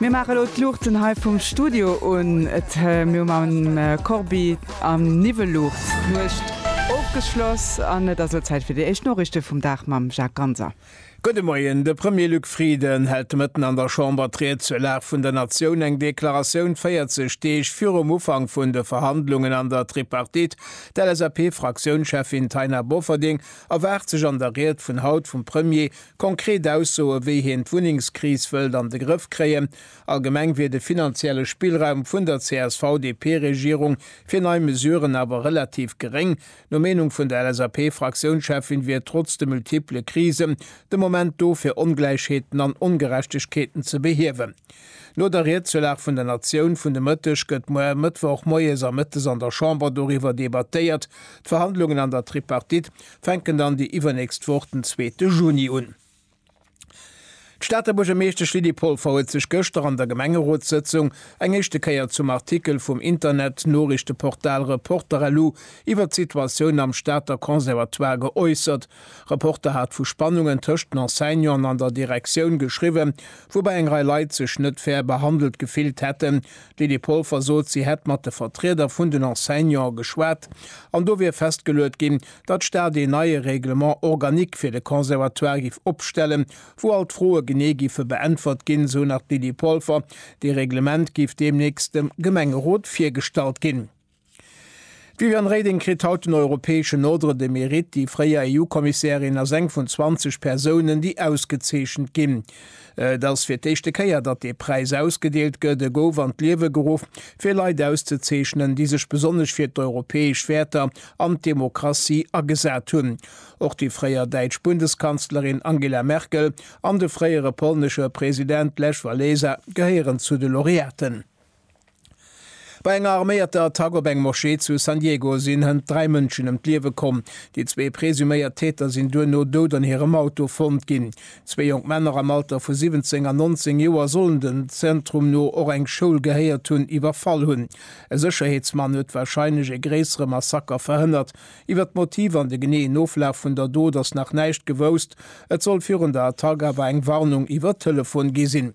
Mir maache elo d'Luuchten hei vum Studio un. Et mir hu mam Corbi am Niwwel Luucht d'Nuecht ofgeschloss an et ass elo Zäit fir déi éischt Noriichte vum Dag mam Jacques Ganser. Gudde Moien. De Premier Luc Frieden hält de Mëtten an der Chamber d'Ried zur Lag vun der Natioun, eng Deklaratioun 40 Deeg virum Ufank vun de Verhandlungen an der Tripartite. D'LSAP-Fraktiounscheffin Taina Bofferding erwaart sech an der Ried vun haut vum Premier Konkret Aussoe wéi hien d'Wunnengskris wëllt an de Grëff kréien. Allgemeng wier de finanzielle Spillraum vun der CSV-DP-Regierung fir nei Mesuren awer relativ geréng. No Meenung vun der LSAP-Fraktiounscheffin wier trotz de multiple Krisen de Moment do fir Ongläichheeten an Ongerechtegkeeten ze behiewen. No der Ried zur Lag vun der Natioun vun de Mëtteg gëtt muer Mëttwoch moies a mëttes an der Chamber doriwwer debattéiert. D'Verhandlungen an der Tripartite, fänken dann déi iwwernächst Woch den zweete Juni un. D'Stater Buergermeeschtesch Lydie Polfer huet sech gëschter an der Gemengerotssëtzung eng éischte Kéier zum Artikel vum Internet-Noriichteportal Reporter-LU iwwert d'Situatioun am Stater Conservatoire geäussert. Reporter hat vu Spannungen tëscht den Enseignanten an der Direktioun geschriwwen, woubäi eng Rei Leit sech net fair behandelt gefillt hätten, D'Lydie Polfer sot, si hätt mat de Vertrieder vun den Enseignante geschwat an do wier festgeluet ginn, datt d'Stad een neie Règlement organique fir de Conservatoire géif opstellen, wou all d'Froe genee géife beäntwert ginn, esou nach d'Lydie Polfer. Dee Reglement géif deemnächst dem Gemengerot virgestallt ginn. D'Viviane Reding kritt haut den europäeschen Ordre de Mérite. Déi fréier EU-Kommissärin ass eng vun 20 Persounen, déi ausgezeechent ginn. Et ass fir d'éischte Kéier, datt dee Präis ausgedeelt gëtt. E gouf an d'Liewe geruff, fir Leit auszezeechnen, déi sech besonnesch fir d'europäesch Wäerter an d'Demokratie agesat hunn. Och déi fréier däitsch Bundeskanzlerin Angela Merkel an de fréiere polnesche President Lech Wałęsa gehéieren zu de Laureaten. Bei enger arméierter Attack op eng Moschee zu San Diego sinn hënt dräi Mënschen ëm d'Liewe komm. Déi zwee presuméiert Täter sinn duerno dout an hirem Auto fonnt ginn. Zwee jonk Männer am Alter vu 17 an 19 Joer sollen, dem Zentrum no, och eng Schoul gehéiert hunn, iwwerfall hunn. E Sécherheetsmann huet warscheinlech e gréissere Massaker verhënnert. Iwwer d'Motiv an de geneeën Oflaf vun der Dot ass nach näischt gewousst. Et soll virun der Attack awer eng Warnung iwwer Telefon gi sinn.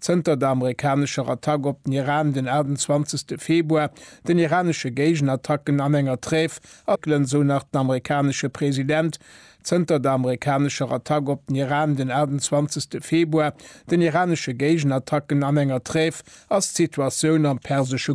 Zënter der amerikanescher Attack op den Iran den 28 Februar, den iranesche Géigenattacken an enger Trêve erkënnen, esou nach den amerikanesche President. Zënter der amerikanescher Attack op den Iran den 28 Februar, den iranesche Géigenattacken an enger Trêve ass d'Situatioun am persesche